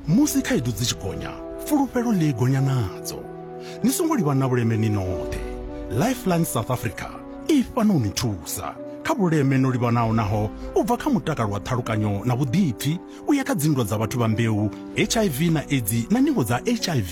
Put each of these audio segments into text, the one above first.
Musi khaedu dzi tshi gonya, fulufhelo ḽi gonya nadzo. Ni songo livha na vhuleme ni noṱhe. Lifeline South Africa i fhano u ni thusa kha vhuleme no livhanaho naho u bva kha mutakalo wa ṱhalukanyo na vhuḓipfi u ya kha dzinndwa dza vhathu vha mbeu, HIV na Edzi na ndingo dza HIV.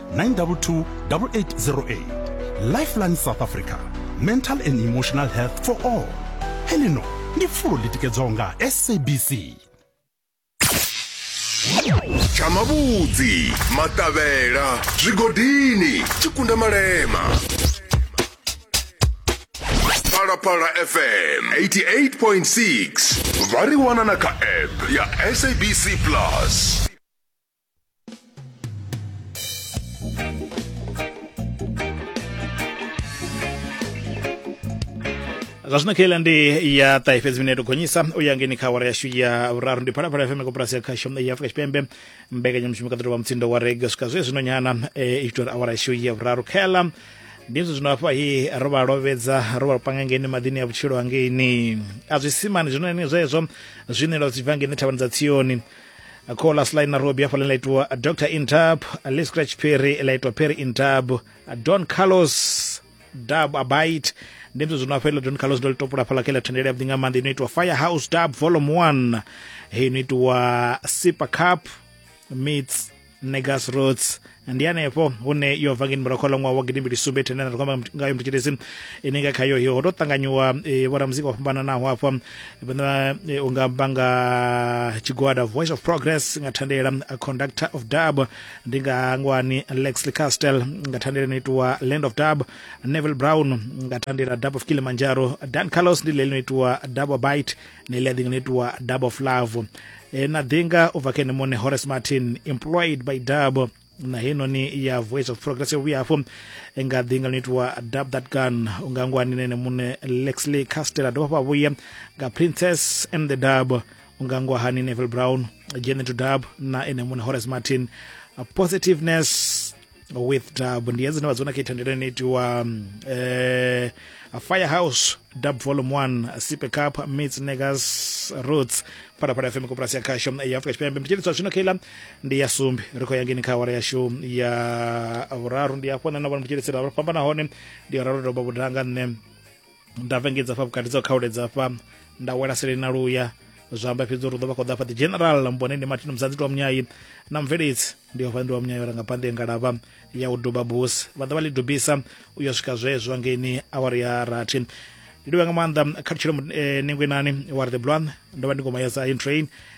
922 8808 lifeline south africa mental and emotional health for all helino ndi fulo litikedzwaho nga sabc tsha mavhudzi maṱavhela zwigodini tshikunda malema phalaphala fm 88.6 vha ri wana na kha app ya sabc plus zwa zwino khaila ndi ya ṱahe fhedzi mineto gonyisa u ya ngeni kha awara yashu ya vhuraru ndi phalaphala ya fm koporasi ya khasho ya afrika tshipembe mbekanyamushumo kaḓiro wa mutsindo wa rega swika zwe zwino nyana eh, i tori awara yashu ya vhuraru khaela ndi zwi zwino hafha hi ro vha lovhedza ro vha panga ngeni maḓini ya vhutshilo hangeini a zwisimani zwino ni zwezwo zwinelo zwi bva ngeni thavhani dza tsioni kho last line na robi hafhaḽa ḽa itiwa dr intab lee scratch perry ḽa itiwa perry intab don carlos dub abite ndi mzwe zwino hafha iḽo don carlos ndo ḽi topula hafhaḽa kha iḽa thendelo yavhuḓi nga maanḓa ino itiwa fire house dub volume one heyi ino itiwa super cup meets negas roads ndi hanefho hune yo bva ngeni murakholo ṅwaha wa gidimbili sumbe thene na ri kwamba ngayo muthu tshilesi ine nga khayo hiyo ho to ṱanganyiwa eh, vhoramuzika vho fhambananaho hafha vhana eh, u nga amba nga tshigwada voice of progress nga thandela a conductor of dub ndi nga ngwani lexley castle nga thandela ino itiwa land of dub neville brown nga thandela dub of kilimanjaro dan carlos ndi leli ino itiwa double bite ne ḽi a ḓinga no itiwa dub of love e, na ḓinga u bva kha ene muṋe horace martin employed by dub na heinoni ya voice of progress yo vhuya hafho nga ḓinga ḽo itiwa dub that gun u nga ngwani na ene muṋe lexley castela dovha hafha vhuya nga princess and the dub u nga ngwahani neville brown jene to dub na ene muṋe horace martin positiveness with dub ndi hedzine vha dzona kha ithandela ine itiwa um, eh, firehouse dub volume 1 sipe cup mits negas roots phalaphala fm koporasi ya khasho ya afrika tshipembe mtshilitswa zwino khaila ndi ya sumbi ri khou ya ngeni kha awara yashu ya vhuraru ndi afho nṋe na vhona mtshilitsela fhambana hone ndi ya raru doba vhudanga nṋe nda vengedza fha vhukati dza khauledza fha nda wela seleni na luya zwa amba fhedzi uri ḓo vha khou ḓa fha the general mbone ndi martin muzanzi tiwa munyayi na mveledzi ndi ofha ndi wa munyayi ora nga pande ya ngalava ya u duba busi vha ḓa vha ḽi dubisa u yo swika zwezwo ngeni awari ya rathi ndi livha nga maanḓa kha lutshilo nengwenani wa ri the blwan ndo vha ndi ngoma ya zion train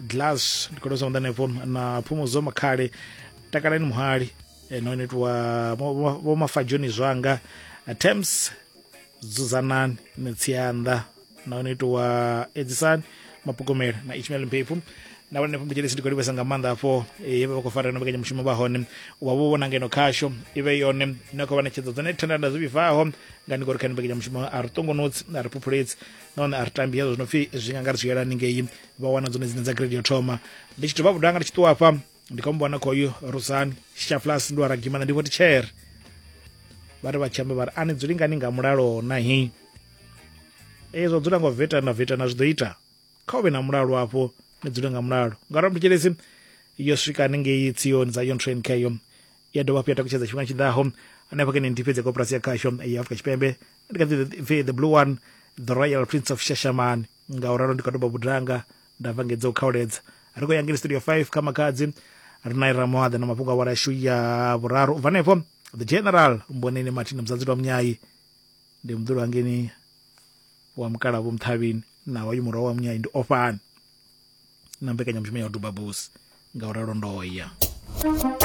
glass ndi khou tou sonda hanefho na phumudzo makhale takalani muhali eh, no netiwa vho mafadzhoni zwanga eh, temps dzudzanani ni tsianda no netiwa edzisani mapukomela na ishmael mpepfu na vhone phumbutshele sidi kolivhesa nga maanḓa afho eh, yevha vha khou fara no vhekanya mushumo vha hone wa vho vhona ngeno khasho ivhe yone na khou vha ṋetshedzo dzone thanda nda zwi vhibvaho nga ni kori kha ni vhekanya mushumo a ri ṱongonotsi a ri phuphuledzi nahone a ri tambi hezwo zwi no pfi zwi nga nga ri zwi yela haningei vha wana dzone dzine dza grade yo thoma ndi tshi dovha vhudo anga ndi tshi ṱuwa afha ndi kho mubona khoyu rusani shaflas ndi wa ragimana ndi vho tichere vha ri vha tshi amba vha ri a ni dzuli ngani nga mulalo na hi ee zwa dzula ngo vetana vetana zwi ḓo ita kha u vhe na mulalo afho ni dzule nga mulalo ngauri mthetshelesi yo swika haningei tsioni dza yon train kheyo ya dovha hafhu ya takutshedza tshifhinga tshi ḓaho hanefha kene ndi fhedze koporasi ya khasho ya afrika tshipembe ndi kha ḓi the blue one the royal prince of shashamani nga u ralo ndi kha doba budanga nda vhangedza u khaoledza ri khou ya ngeli studio 5 kha makhadzi ri na ira moaḓa na mafhungo a wala yashu ya vhuraru u bva hanefho the general mboneni martin muzadzi lwa munyayi ndi muḓulu hangeni wa mukala vho muthavhini naho uyu murahu wa munyayi ndi ofhani na mbekanyamushumo ya u duba busi nga u ralo ndoya